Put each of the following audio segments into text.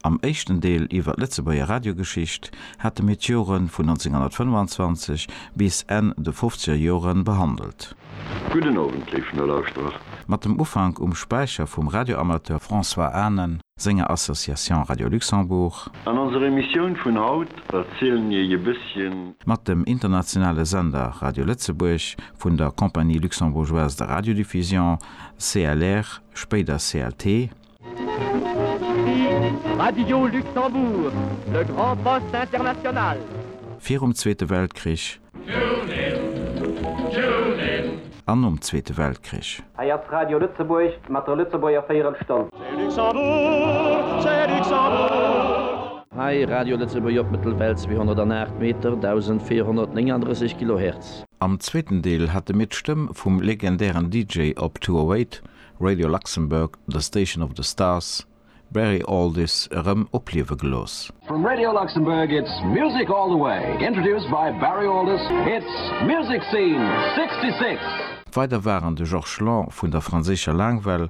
Am éischten Deel iwwer d'Lëtzebuerger Radiogeschicht hate mir d'Jore vun 1925 bis Enn de fofzeger Jore behandelt. Gudden Owend, léif Nolauschterer. Mat dem Ufank um Späicher vum Radioamateur François Anen senger Association Radio Luxembourg. An onser Emissioun vun haut erzielen mir iech e bësschen. Mat dem internationale Sender Radio Lëtzebuerg vun der Compagnie Luxembourgeoise de Radiodiffusion, CLR, spéider CLT. Radio Luxembourg, le grand poste international. Virum Zweete Weltkrich. Tuunin, tuunin. An nom Zweete Weltkrich. Hei ass Radio Lëtzebuerg mat der Lëtzebuerger Véierelstonn. C'est Luxembourg, c'est Luxembourg. Hei Radio Lëtzebuerg op Mëttelwell 208 Meter, 1439 Kilohertz. Am zweeten Deel hate mir d'Stëmm vum legendären DJ op 208, Radio Luxembourg, The Station of the Stars, Barry Alldis erëm opliewe gelooss. From Radio Luxembourg it's music all the way, introduced by Barry Alldis, it's Music Scene 66! Weider waren de Georges Lang vun der franséischer Laangwell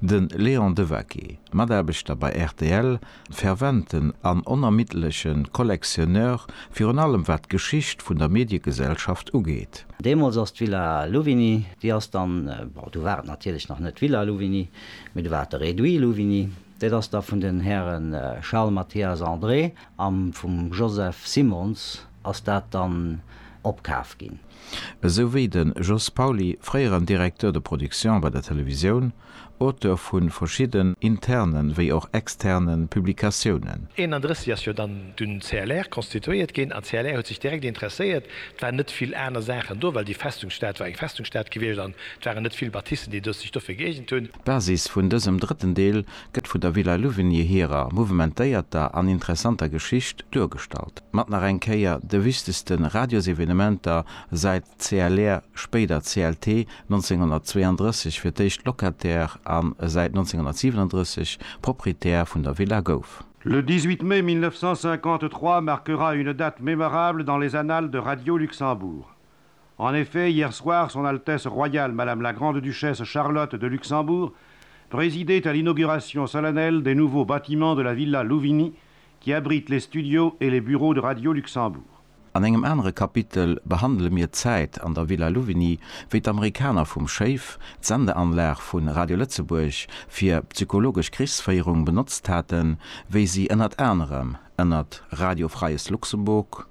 De Léon Devaquet, Mataarbechter bei rtl, ferventen an onermiddleche Collectionneur, virun allem wat d'Geschicht vun der Mediegesellschaft ugeet. Deemools ass d'Villa Louvigny, déi ass dann, bon, du war et natierlech nach net d'Villa Louvigny, mee du war et de Réduit Louvigny, dat ass da vun den Häre Charles Mathias André a vum Joseph Simons, Ass dat dann opkaf ginn? Esou wéi de Jos Pauly, fréieren Directeur de production bei der Televisioun, Auteur vu verschidden interne wéi och externe Publikatiounen. 31 ass jo dann dun CLR constituéiert ginn an CLR huet sech direkt interesséiert. Et waren net vill aner Saachen do, well déi Festungsstad war eng Festungsstad gewiescht an et waren net vill Bâtissen, déi sech dofir gëeegent hunn. D'Basis vun dësem drëtten Deel gëtt vun der Villa Louvigny hirer mouvementéierter an interessanter Geschicht duergestallt, mat nach eng Kéier de wichtegste Radiosevenementer säit CLR, spéider CLT, 1932 fir d'éischt Locataire a säit 1937 Proprietär vun der Villa gouf. Le 18 mai 1953 marquera une date mémorable dans les annales de Radio Luxembourg. En effet, hier soir, Son Altesse Royale Madame la Grande-Duchesse Charlotte de Luxembourg présidait à l'inauguration solennelle des nouveaux bâtiments de la Villa Louvigny qui abrite les studios et les bureaux de Radio Luxembourg. An engem anere Kapitel behandele mir d'Zäit an der Villa Louvigny, wéi d'Amerikaner vum Schéif d'Sendeanlag vu Radio Lëtzebuerg fir psychologesch Krichsféierung benotzt haten, wéi si ënnert anerem ënnert Radio Freies Luxemburg,